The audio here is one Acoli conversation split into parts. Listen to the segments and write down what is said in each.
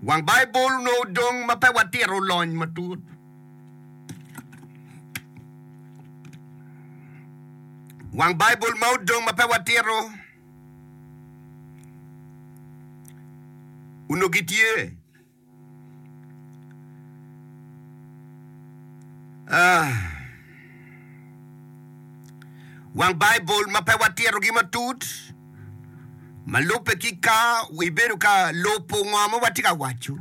Wang Baibul onongo dong ma pe watito lony matut. Wang Baibul ma odong ma pe watito onongo gitye Wang Baibul ma pe watitogi matut ma lubbe ki ka ibedo ka lubo ngo ma watye ka waco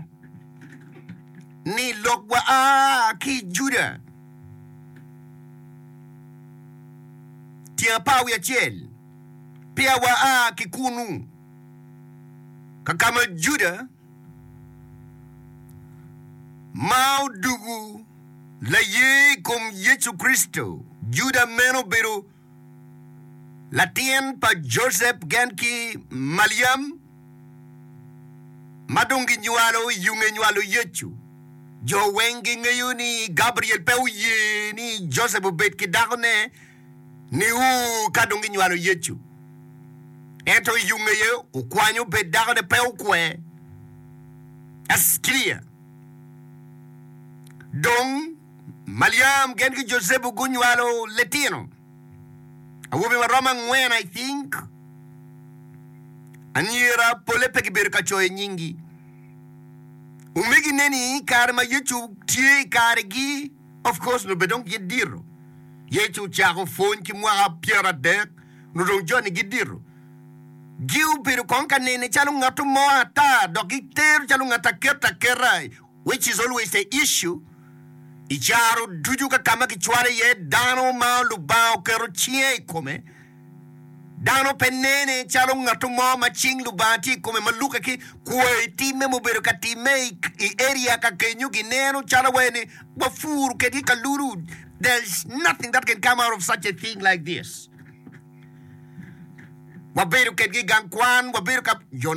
ni lok wa a ki Juda tyen apar wiye acel peya wa a ki kunu kakama Juda ma odugu laye i kom Yecu Kricito Juda meno obedo latin pa Josep gen ki Maliam ma dong ginywalo i yunge nywalo Yecu. Jo weng gingeyo ni Gabriel pe oye ni Josep obed ki dakone niu ka dong ginywalo Yecu. Ento i yunge aye okwanyo bed dakone pe okwe. Ascria. Dong. Maliam gin ki Jucepu gunywalo litino awobe ma romo angwen, I think. Anyira pole pe gibedo ka coyo nyingi. Omegine ni i kare ma Yecu tye i karegi, of course nongo bene dong gidito. Yecu ocako pwony ki mwaka pyeradek, nongo dong joni gidito. Giobedo kong ka nene calo ngatto mo ata dok gitero calo ngat aketa aketa. which is always the issue, i caro ducu ka ka ma kicwalo iye dano ma Lubanga oketo cinge i kome, dano pe nene calo ngat mo ma cing Lubanga tye i kome ma luke ki kwoyo i timme ma obedo ka timme i, i area ka kenyo. Gineno calo wai ni wapur kedgi kalulu. There's nothing that can come out of such a thing like this. Wabedo kedgi i gang kwan, wabedo ka, you know.